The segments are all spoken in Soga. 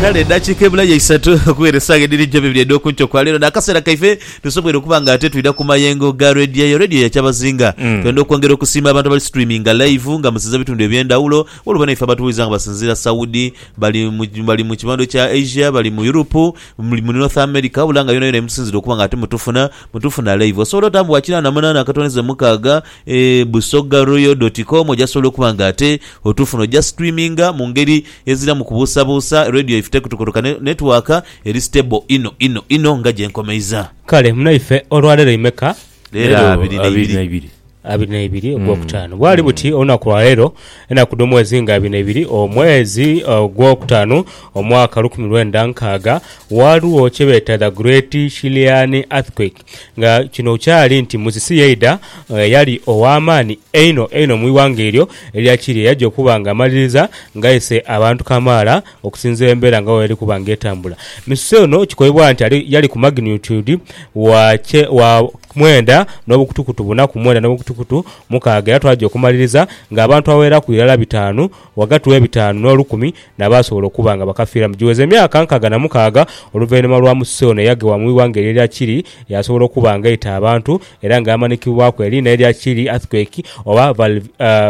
Kale edhakiika ebulayo isatu okughera esaawa edhiri nti bibiri edh'oku nkyo kwa leero, n'akaseera kaife tusobweire okuba nga ate twidha ku mayengo ga Radio eyo, Radio ya Kyabazinga. Twenda okwongera okusiima abantu abali streaminga live nga musinza bitundu eby'endhawulo, waliwo banaiffe abatuwuliza nga basinziira Saudi, bali mu bali mu kibando kya Asia, bali mu Europe, muli mu North America, wabula nga yonayona yemutusinzira okuba nga ate mutufuna, mutufuna live. Osobola otambuwa kinaana munaana akatonezo mukaaga, Eeh Busoga Royal dot com oja sobola okuba nga ate otufuna oja streaminga mungeri eziramu kubuusabuusa Radio ife tekutukotoka ne network eri stable inho inho inho nga jenkomeiza. Kale munaife olwaleero imeka? Leero Leero abiri abiri naibiri. naibiri. Abiri naibiri ogwokutaanu bwali buti olunaku lwaleero enaku dhomwezi nga abiri naibiri omwezi ogwokutaanu omwaka lukumi lwenda nkaaga waaliwo kyebeeta the great Chilean earthquake. nga kino kyali nti Musisi yaidha eyali ow'amaani einho einho mu ighanga eryo erya Kiria yaja okuba nga amaliriza ng'aise abantu kamaala okusinziira embera nga bweyali kuba nga etambula. Misuse ono kikoibwa nti ali yali ku magnitude wa kye wa mwenda n'obukutukutu buna ku mwenda n'obukutukutu mukaaga era twaja okumaliriza ng'abantu abagheraku irala bitaanu Ghagati w'ebitaanu n'olukumi n'abaasobola okuba nga bakafiiramu giweza emyaka nkaaga na mukaaga oluvainhuma lwa Musisi ono eyaghewa mu ighanga erya Chile yaasobola okuba nga eita abantu era nga yamanikibwaku eriina erya Chile Earthquake oba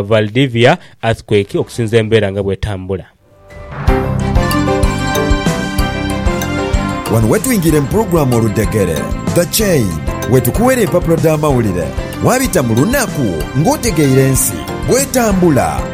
Valdivia Earthquake okusinza embeera nga bw'etambula. Wano wetwingira mu pulogulaamu Oludhegere, The Chain, wetukuwera empapula dh'amawulire, wabita mu lunaku ng'otegeire ensi bw'etambula.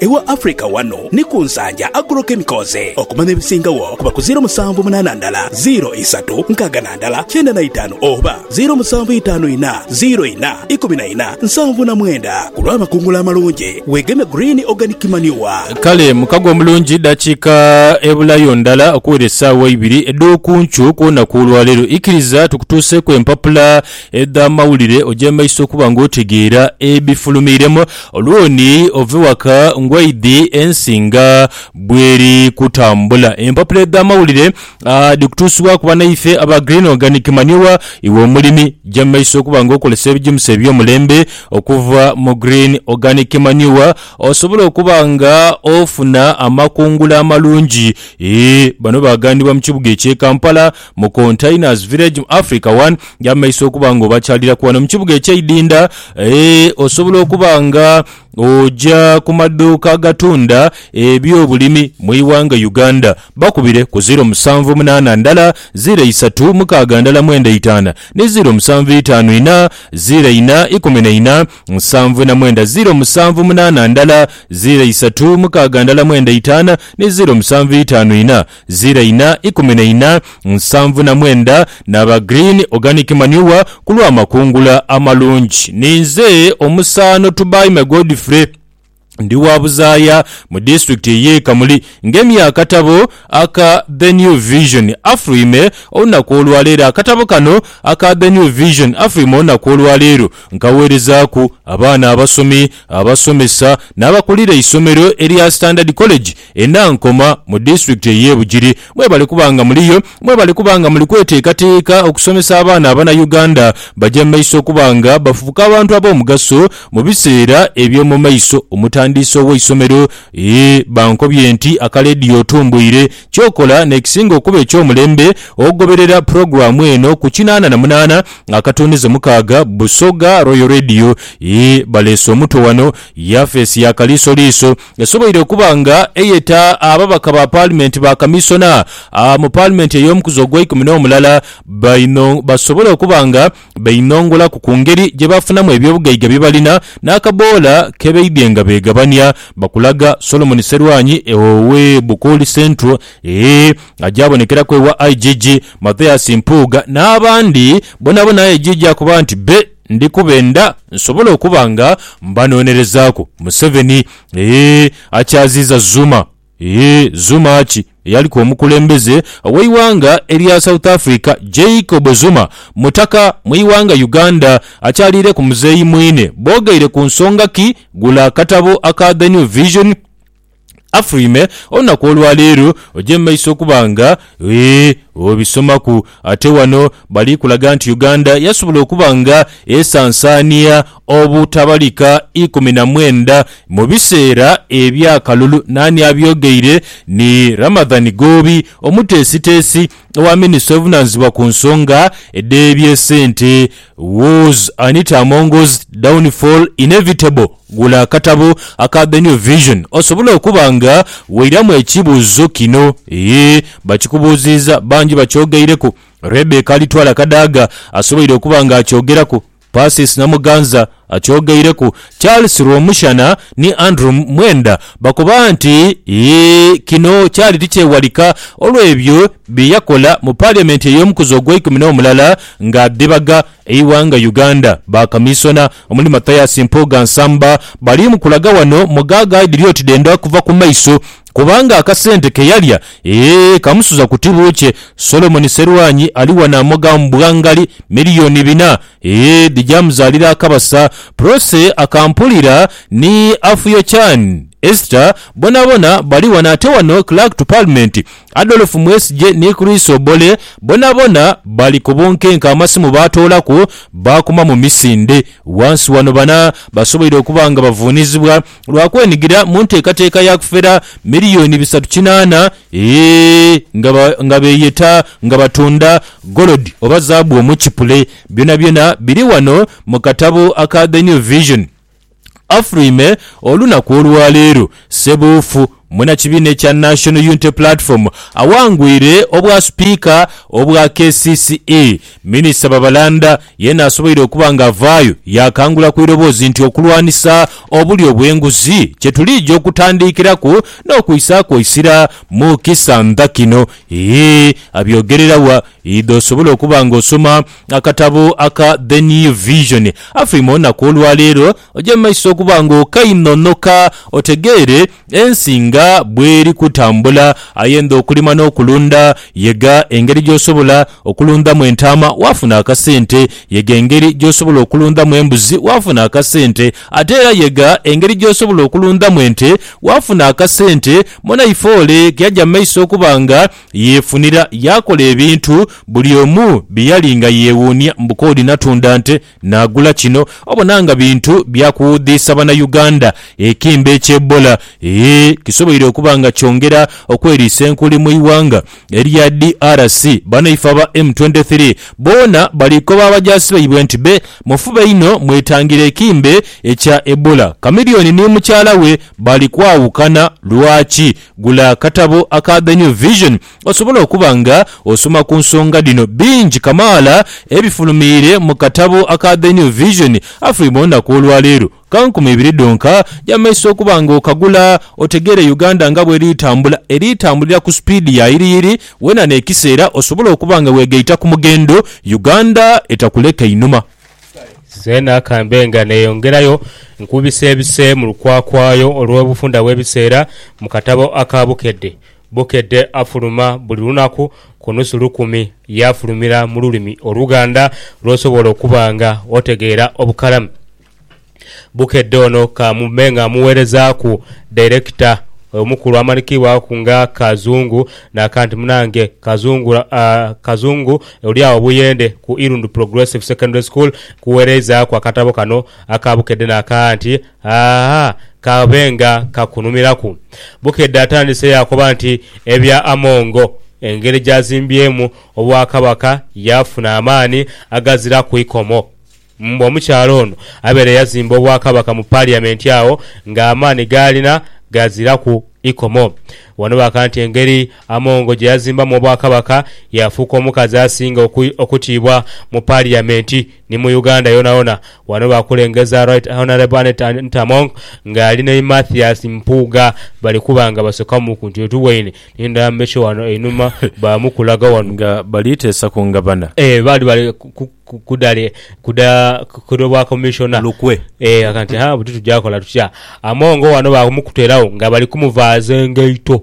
Ewa Africa wano ni ku Nsaanja Agro Chemicals okumanya ebisingagho kuba ku ziiro musanvu munaana ndala ziiro isatu nkaaga na ndala kyenda na itaanu oba ziiro musanvu itaanu inha ziiro inha ikumi na inha nsanvu na mwenda ku lw'amakungula amalungi. Weegeme Green Organic Manure. Kale mukago omulungi dakiika ebulayo ndala okuwera esaawa eibiri edh'okunkyo ku lunaku olwaleero. Ikiriza tukutuuseeku empapula edh'amawulire ogyemaiso okuba nga otegeera ebifulumiiremu. Olwoni ove waka ngwaidhi ensi nga bweri kutambula. Empapula edh'amawulire dhi kutuusibwaku banaife aba Green Organic Manure iwe omulimi. Ja mu maiso okuba nga okozesa ebijimusa eby'omulembe okuva mu Green Organic Manure osobole okuba nga ofuna amakungula amalungi. Bano baghanibwa mu kibuga ekye Kampala. mu Containers Village mu Africa One gy'amaiso okuba nga obakyaliraku wano mu kibuga eky'e Idinda. Eeh, osobola okuba nga oja ku maduuka agatunda eby'obulimi mu ighanga Uganda. Bakubire ku ziro musanvu munaana ndala ziro isatu mukaaga ndala mwenda itaana ni ziro musanvu itaanu ina ziro ina ikumi na ina nsanvu na mwenda ziro musanvu munaana ndala ziro isatu mukaaga ndala mwenda itaana ni ziro musanvu itaanu ina Zira ina ikumi na ina, nsanvu na mwenda n'aba Green Organic Manure ku lw'amakungula amalungi. Ninze omusaano Tubaime Godfrey. Ndi wa Buzaaya mu disitulikiti y'e Kamuli ngemye akatabo aka The New Vision Afrime olunaku olwaleero. Akatabo kano aka The New Vision Afrime olunaku olwaleero nkaweerezaaku abaana abasomi, abasomesa n'abakulira eisomero erya Standard College E Nankoma mu disitulikiti ey'e Bugiri mwebali kuba nga muliyo mwebali kuba nga muli kweteekateeka okusomesa abaana Abanayuganda baja mu maiso okuba nga bafubuka abantu ab'omugaso mu biseera eby'omu maiso. Omutandiisi ow'eisomero e bankobye nti aka leediyo otumbuire ky'okola n'ekisinga okuba eky'omulembe ogoberera pulogulaamu eno ku kinaana na munaana akatunduze mukaaga Busoga Royal Radio e baleese omuto wano yafeesi ya kaliisoliiso esoboire okuba nga eyeta ababaka ba Paalimenti ba Kamisona mu Paalimenti ey'omukuzi ogweikumi n'omulala baino basobole okuba nga beinongolaku ku ngeri gye bafunamu ebyobugaiga bye balina n'akaboola ke baidhye nga beegabania bakulaga Solomon Serwanyi owe Bukooli Central agyabonekeraku ewa IGG Mathias Mpuuga n'abandi bonabona IGG akuba nti be Ndi kubenda nsobole okuba nga mbanoonerezaaku. Museveni, Eeh, akyaziiza Zuma? Eeh, Zuma ki? Eyaliku omukulembeze ow'eighanga erya South Africa, Jacob Zuma, mutaka mu ighanga Uganda, akyaliireku muzeeyi mwine. Boogeire ku nsonga ki? Gula akatabo aka The New Vision. Afurime olunaku olwa leero oje mu maiso okuba nga ee obisomaku. Ate wano bali kulaga nti Uganda yasobola okuba nga esansaania obutabalika ikumi na mwenda mu biseera eby'akalulu. Naani abyogeire? Ni Ramadhan Goobi, omuteesiteesi owa minisita ovunaanizibwa ku nsonga edh'ebyesente was Anita Amongo's downfall inevitable? Gula akatabo aka The New Vision osobole okuba nga weiramu ekibuuzo kino. Yee, bakikubuuziiza, bangi bakyogeireku. Rebecca Alitwala Kadaga asoboire okuba ng'akyogeraku. Persis Namuganza akyogeireku, Charles Rwomushana ni Andrew Mwenda bakoba nti kino kyali tikyewalika olw'ebyo bye yakola mu Parliament ey'omukuzi ogweikumi n'omulala nga adhibaga eighanga Uganda. Ba Kamisona omuli Mathias Mpuuga Nsamba bali mu kulaga wano mu ghagha edhiri oti dhendha kuva ku maiso. kubanga akasente ke yalya, ee, kamusuza ku tibu kye. Solomoni Serwanyi ali wano amoga mbwa ngali miliyooni bina, ee, dhija muzaalira akabasa. Prossy Akampulira ni Afuyochan Esther bonabona bali wano. Ate wano Clerk to Parliament Adolf Mwesigye ni Chris Obore bonabona bali ku bunkenke, amasimu baatoolaku baakuma mu misinde. Wansi wano bana basoboire okuba nga bavuunizibwa. lwa kwenigira mu nteekateeka ya kufera miliyoni bisatu kinaana nga beeyeta nga batunda golodi oba zaabu omu kipule. Byonabyona biri wano mu katabo aka The New Vision. Afurime olunaku olwaleero, Ssebuufu. Munakibiina ekya National Unity Platform awangwire obwa Sipiika obwa kcce, Minisita Babalanda yeena asoboire okuba nga avaayo yaakangula ku iroboozi nti okulwanisa obulyo obw'enguzi kye tuliija okutandiikiraku n'okwissaaku eisira mu kisantha kino. Hii abyogerera wa? Idha osobole okuba nga osoma akatabo aka The New Vision. Afiima olunaku olwaleero. Oje mu maiso okuba ng'okainhonhoka otegeere ensi nga bw'eri kutambula. Ayenda okulima n'okulunda? Yega engeri gy'osobola okulundhamu entaama waafuna akasente. Yega engeri gy'osobola okulundhamu embuzi waafuna akasente. Ate era yega engeri gy'osobola okulundhamu ente waafuna akasente. Mwanaifeole ke yaja mu maiso okuba nga yeefunira yaakola ebintu buli omu bye yali nga yeewuunia mbu k'oli natunda nte. Naagula kino obona nga bintu bya kuwuudhiisa Bannayuganda, ekimbe kya Ebola eeh kisoboire okuba nga kyongera okweriisa enkuli mu ighanga erya DRC. Banaife aba M twenty three boona bali koba abajaasi baibwe nti be mufube inho mwetangire ekimbe ekya Ebola. Chameleone ni mukyala we bali kwawukana. Lwaki? Gula akatabo aka The New Vision Osobola okuba nga osoma ku nsonga dhino bingi kamaala ebifulumiire mu katabo aka The New Vision Afri mu lunaku olwaleero. Ka nkumi ibiri dhonka dh'amaiso okuba nga okagula otegeere Uganda nga bw'eri litambula, eri litambulira ku supiidi ya yiriyiri weena n'ekiseera osobola okuba nga weegaita ku mughendo Uganda etakuleka inhuma. Zeena kambe nga neeyongerayo nkubiseebise mu lukwakwayo olw'obufunda bw'ebiseera mu katabo aka Bukedde Bukedde afuluma buli lunaku ku nusu lukumi. Yaafulumira mu lulimi Oluganda lw'osobola okuba nga otegeera obukalamu. Bukedde ono ka mube nga mmuweerezaaku dairekita omukulu amanikibwaku nga Kazungu naka nti munange Kazungu Kazungu oli agho Buyende ku Irundu Progressive Secondary School nkuweereizaaku akatabo kano aka Bukedde naka nti Haa, kabe nga kakunhumilaku. Bukedde atandise yaakoba nti ebya Amongo, engeri gy'azimbyemu Obwakabaka yaafuna amaani agaziraku ikomo. Mbu omukyala ono abeere yazimba Obwakabaka mu Paliyamenti agho ng'amaani g'alina gaziraku ikomo. Wano baaka nti engeri Amongo gye yazimbamu Obwakabaka yaafuuka omukazi asinga okutiibwa mu Paliyamenti. Ni mu Uganda yonayona. Wano baakulengeza Right Honourable Annet Antamong nga ali ni Mathias Mpuuga bali kuba nga basoka mu kuntu yetuweine n'endala mbeche wano einhuma baamu kulaga wano. Nga bali teesa ku ngabana. Eeh baali bali kudale kuda kuda obwa Commissioner. Lukwe. Eeh aga nti haa buti tugya kola tutya. Amongo wano baamukuteeragho nga bali kumuvaaza engaito.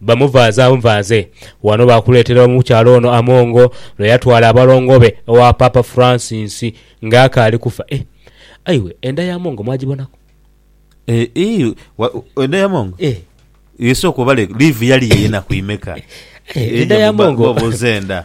Bamuvaaza buvaaze. Ghano baakuleetera omukyala ono amongo lwe yatwala abalongo be ewa Paapa Francis nga akaali kufa. Eh! Ayiwe, enda y'amongo mwagibonaku? Eeh, wa, enda y'amongo? Eh. Ye sooka obale, liivu yali y'enaku imeka? Eh, enda y'amongo. Obuuza enda.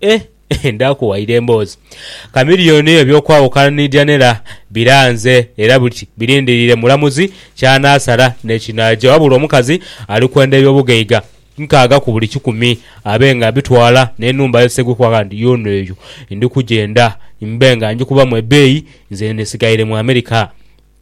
Eh, eh, ndaakuwaire emboozi. Chameleone yo eby'okwawukana ni Janella biranze era buti birindiriire mulamuzi ky'anaasala ni kinaagya. Wabula omukazi ali kwenda eby'obugaiga nkaaga ku buli kikumi abe nga abitwala n'enhumba ye Ssegwe kuba agambye nti yoona eyo ndi kugyenda mbe nga ngikubamu ebeeyi nze ndisigaire mu America.